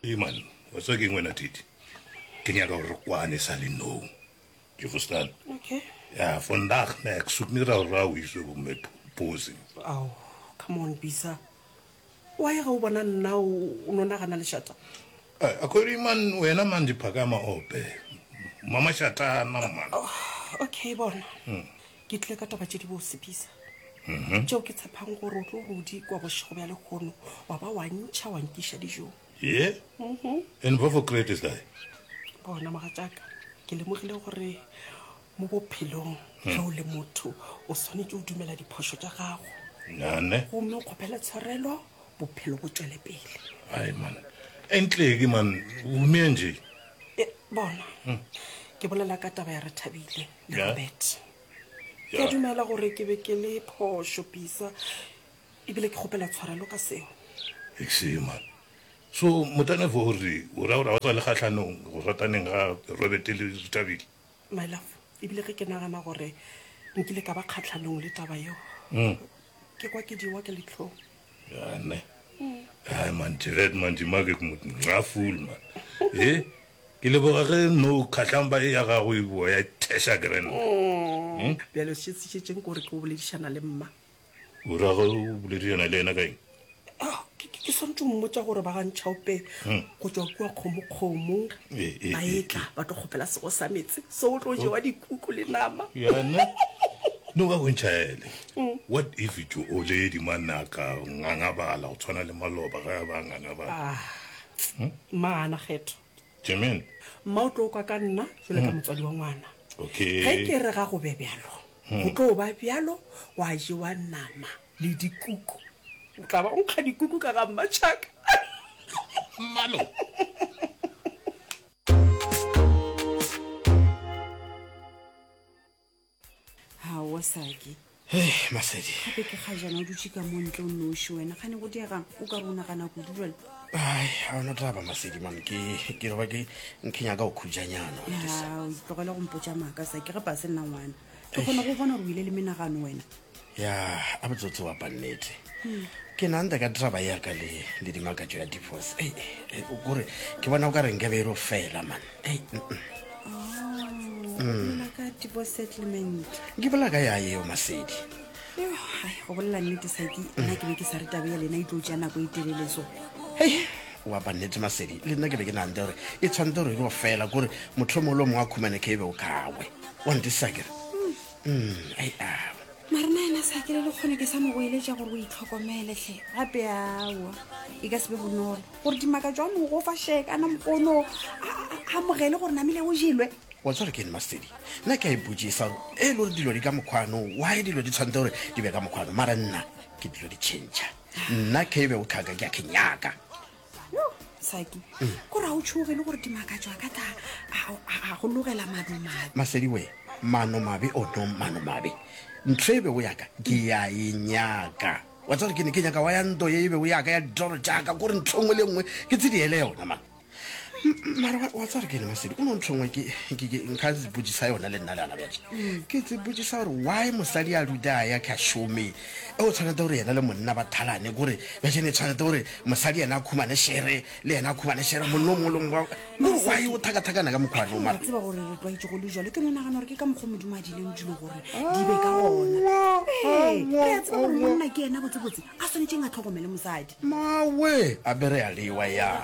Iman, wa tswa keng wena Titi? Ke nyaka gore kwane sa le no. Ke go stan. Okay. Ya, vandag na ek soek nie rou rou hier so om my pose. Au, come on Bisa. Wa ye ga o bona nna o no nagana le shata. Eh, a kore Iman wena man di phakama ope. Mama shata na man. Oh, okay bona. Hmm. ke tlile ka taba tše di bose bisa mhm. tšeo ke tshepang gore o tlo rodi kwa bošego bja lekgono wa ba wa ntšha wa nkiša dijong ye mhm. and what for create is that bona mogatšaka ke lemogile gore mo bophelong ge hmm. o le motho o tshwanetse o dumela diphoso tša gago nane gomme o kgopele tshwarelo bophelo bo tswele pele ai man entleke man o humea nje eh, bona hmm. ke bolela ka taba ya re thabile Le Robert. Ke a dumela gore ke be ke le phošo Pisa. Ebile ke kgopela tshwarelo ka seo. Exe man. So motane fo o re o ra gore ga o sa le kgahlanong go rataneng ga Robert le Thabile? My love, ebile ge ke nagana gore nkile ka ba kgahlanong le taba yeo, ke kwa ke diwa ke letlhong. Gane. Hai man, Jared man, di make it mut nga fool man. Eh? Ke le boga ge no khatlang ba e ya gago e boa ya thesha grand. Hmm? Bjale o šetsitšetseng gore ke o boledišana le mma. O ra go boledišana le yena ka eng? Ah, ke ke swantse mmotsa gore ba ga ntšhaope hmm. go tswa kua kgomokgomo eh, eh, ba etla eh, ba tlo kgopela sego sa metse so o tlo jewa oh. dikuku le nama yane no ba bontšhaele What if tšo o le edima naka ngangabala go tshwana le maloba ge a ba ngangabala? Ah, Maana Kgetho. Jermaine. Mma o tlo kwa ka nna jwale ka motswadi wa ngwana. Okay. Ge ke re ga go be bjalo, go tlo ba bjalo, gwa jewa nama le dikuku. O tla ba o nkga dikuku ka ga mmatšhaka. Mmalo. gaowa saki hey masedi gape ke ga jana o dutse ka mo ntle o noši wena ga ne go diegang o ka re o nagana kudu jale ai ga ona taba masedi man ke ke roba ke nke nyaka go khujanyana tlogele go mpotsa maaka sa ke ge pa se nna ngwana ke kgona go bona gore o ile le menagano wena ya a botsotsi wa pannete ke nanta ka draba ya ka le le dimakatso ya divorce ei ei, o kore ke bona o ka reng ka be e ro fela man ei mm, mm. Mm. ka tipo settlement ke bola ka ya eo masedi Yo, hai, go bolela nnete saki nna ke be ke sa re taba ya lena e tlo tšea nako e telele so hei wa pannete masedi le nna ke be ke nanta gore e tshwanetse gore e ro fela kore motlho mongwe le o mongwe a khumane ke e be o kawe wa ntisa kere mm ai awa mare na ena sa kele le kgone ke sa mo goeletša gore o itlhokomele hle gape awa e ka se be bonolo gore dimaka jwa mogo fa shekana mokono a mogele gore namile o jelwe wa tsware ke nmastedi nna ke a ipotsisa gore e le gore dilo di ka mokgwano why dilo di tshwanetse gore di be ka mokgwano mara nna ke dilo di change nna ke be o tlhaka ke a kenyaka saki kore ga o tšhoge le gore dimakatso a ka tla a go logela mano mabe masedi we mano mabe o no mano mabe ntho e bego yaka ke ya e nyaka wa tsere ke ne ke nyaka wa ya nto ye e bego yaka ya ditoro jaaka kore ntho nngwe le nngwe ke tse di ele yona mane mara wa tsere ke ne masedi o no ntho nngwe nka botsisa yona le nna le ana bjatša mm. ke tse botsisa gore why mosadi a ruta a ya ka shome O tshwanete gore yena le monna ba thalane, kore bjale ne tshwanete gore mosadi yena a khumane shere, le yena a khumane shere, monna o mongwe le mongwe ba- kore gwa e o thakathakana ka mokgwa no, Wa mara tseba gore re tlwaetše go le jalo ke no nagana gore ke ka mokgwa modimo a dileng dilo gore di be ka gona Ee, re a tseba gore monna ke ena botsebotse a swanetšeng a tlhokomele mosadi mawe a be re a lewa yang.